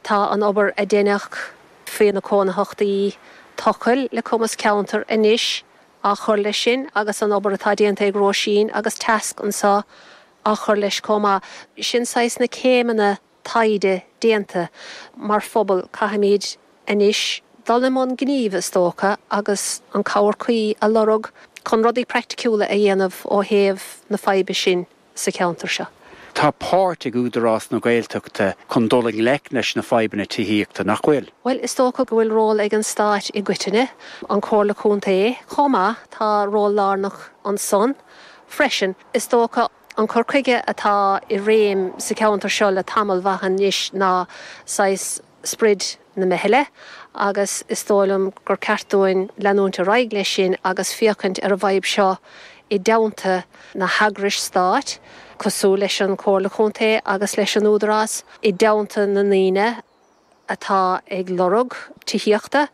Tá an obair a deineadh fé na Cónaitheachtaí Tochail le Cumas Ceantair anois á chur leis sin agus an obair atá déanta ag Róisín agus Tasc anso á chur leis chomh maith. Sin saghas na céimeanna taighde déanta. Mar phobal, caithfimid anois dul i mbun gnímh is dócha agus an cabhair cuí a lorg chun rudaí praiticiúla a dhéanamh ó thaobh na faidhbe sin de. sa cheantar seo. Tá páirt ag Údarás na Gaeltachta chun dul i ngleic leis na fadhbanna tithíochta, nach bhfuil? Bhuel, is dócha go bhfuil ról ag an stáit i gcoitinne, an Comhairle Contae chomh maith, tá ról lárnach ansan freisin. Is dócha, an cur chuige atá i réim sa cheantar seo le tamall mhaith anois ná saghas, sprid na meithle agus is dóigh liom gur ceart dúinn leanúint ar aghaidh leis sin agus féachaint ar an bhfadhb seo i dteannta na heagrais stáit cosúil leis an Comhairle Contae agus leis an Údarás, i dteannta na ndaoine atá ag lorg tithíochta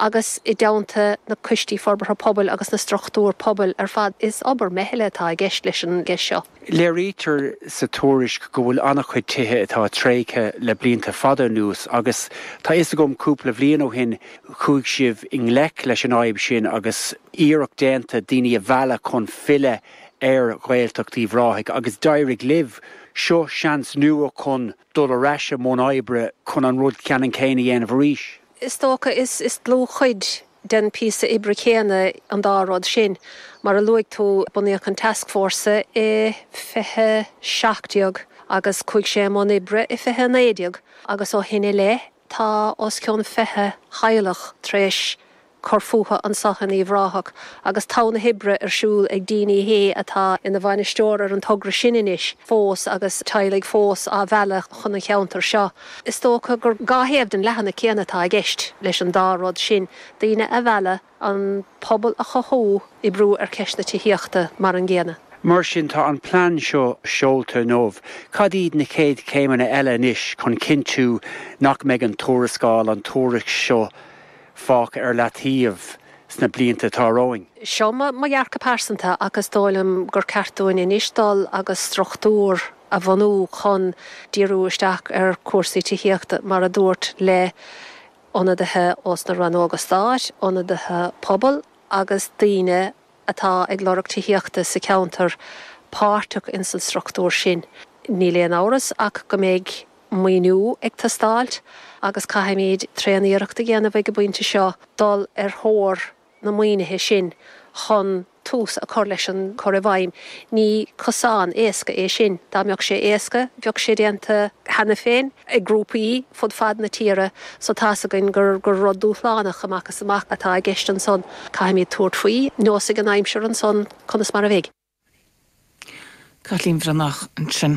agus i dteannta na Coistí Forbartha Pobail agus na struchtúr pobail ar fad. Is obair meithle atá i gceist leis an gceist seo. Léirítear sa tuairisc go bhfuil an-chuid tithe atá tréigthe le blianta fada anuas agus, tá fhios agam, cúpla bhliain ó shin chuaigh sibh i ngleic leis an fhadhb sin agus iarracht déanta daoine a mhealladh chun filleadh ar Ghaeltacht Uíbh Ráthaigh agus d'éirigh libh. Seo seans nua chun dul ar ais i mbun oibre chun an rud ceannann céanna a dhéanamh arís. Is dócha is is dlúthchuid den phíosa oibre chéanna an dá rud sin. Mar a luaigh tú, bunaíodh an tascfhórsa i 2017 agus chuaigh sé i mbun oibre i 2019 agus ó shin i leith tá os cionn 20 theaghlach tar éis cur fúthu anso in Uíbh Ráthach agus togha na hoibre ar siúl ag Dean Sheehy atá ina bhainisteoir ar an togra sin anois fós agus teaghlaigh fós á mhealladh chun an cheantair seo. Is dócha gur dhá thaobh den leathanach céanna atá i gceist leis an dá rud sin, daoine a mhealladh, an pobal a chothú, oibriú ar cheist na tithíochta mar an gcéanna. Mar sin, tá an plean seo seolta inniu. Cad iad na chéad chéimeanna eile anois chun cinntiú nach mbeidh an tuarascáil, an tuairisc seo fágtha ar leataobh sna blianta atá romhainn? Seo mo dhearcadh pearsanta ach is dóigh liom gur ceart dúinn anois dul agus struchtúr a bhunú chun díriú isteach ar chúrsaí tithíochta, mar a dúirt, le ionadaithe ós na rannóga stáit, ionadaithe pobail agus daoine atá ag lorg tithíochta sa cheantar páirteach ins an struchtúr sin. Níl aon amhras ach go mbeidh maoiniú ag teastáilt agus caithfimid tréan iarracht a dhéanamh ag an bpointe seo dul ar thóir na maoinithe sin chun tús a cur leis an gcur i bhfeidhm. Ní cosán éasca é sin. Dá mbeadh sé éasca, bheadh sé déanta cheana féin ag grúpaí fud fad na tíre so tá's againn gur rud dúshlánach amach is amach atá i gceist ansan. Caithfimid tabhairt faoi, neosfaidh an aimsir ansan conas mar a bheidh. Caitlín Bhreathnach ansin.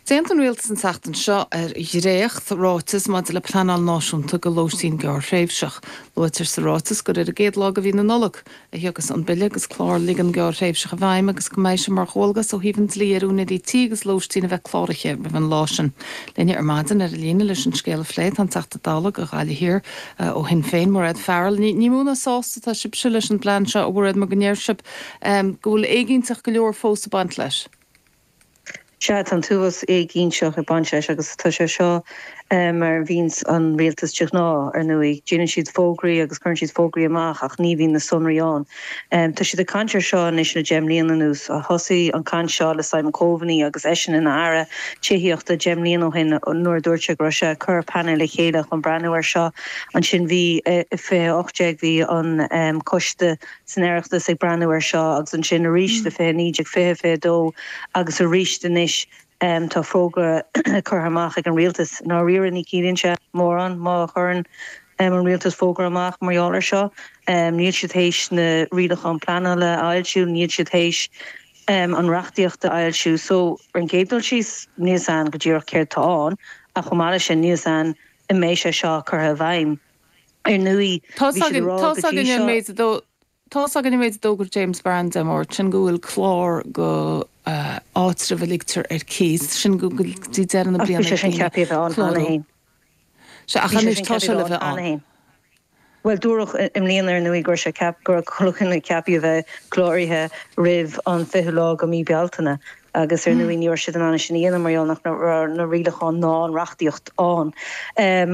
D'aontaigh an Rialtas an tseachtain seo ar dhréachtráiteas maidir le pleanáil náisiúnta go lóistín gearrthréimhseach. Luaitear sa ráiteas gur ar an gcéad lá de mhí na Nollag a thiocfas an bille agus clár ligean gearrthréimhseach i bhfeidhm agus go mbeidh sé mar dhualgas ó thaobh an dlí ar úinéirí tí agus lóistín a bheith cláraithe roimh an lá sin. Linne ar maidin ar an líne leis an scéal a phlé tá an Teachta Dála go Gaillimh Thiar ó Shinn Féin, Mairéad Farrell. Ní mó ná sásta atá sibhse leis an bplean seo a Mhairéad mar go ndeir sibh, go bhfuil éiginnteacht go leor fós ag baint leis. Sea, tá an t-uafás éiginnteacht ag baint leis agus tá sé seo mar a bhíonns an rialtas de ghnáth, ar ndóigh. Déanann siad fógraí agus cuireann siad fógraí amach ach ní bhíonn na sonraí ann. Tá siad ag caint ar seo anois le deich mbliana anuas. Thosaigh an caint seo le Simon Coveney agus eisean ina Aire tithíochta deich mbliana ó shin nuair a dúirt sé go raibh sé ag cur painéal le chéile chun breathnú air seo. Ansin bhí, i 2018, bhí an Coiste. san Oireachtas ag breathnú air seo agus ansin aríst i 20 19 20 22 agus aríst anois tá fógra curtha amach ag an Rialtas Dáiríre ní chiallaíonn sé mórán má chuireann an Rialtas fógra amach mar gheall ar seo níl siad théis na rialacháin pleanála a fhoilsiú níl siad théis an reachtaíocht a fhoilsiú so ar an gcéad dul síos níl a fhios againn go díreach céard tá ann ach chomh maith leis sin níl a fhios againn an mbeidh sé seo curtha i bhfeidhm Ar ndóigh, bhí siad ag rá go dtí seo. Tá's againn an méid a d'fhógair James Browne Dé Máirt, sin go bhfuil clár go áitreabh a ligtear ar cíos, sin go dtí deireadh na bliana. Ach bhí sé sin ceaptha a bheith ann cheana féin. Sea, ach anois tá sé le bheith ann. Bhuel, dúradh i mbliana ar ndóigh go raibh sé ceaptha, go raibh chuile dhuine ceaptha a bheith cláraithe roimh an 20ú lá go mí Bealtaine agus ar ndóigh ní raibh siad in ann é sin a dhéanamh mar gheall nach raibh na rialacháin ná an reachtaíocht ann.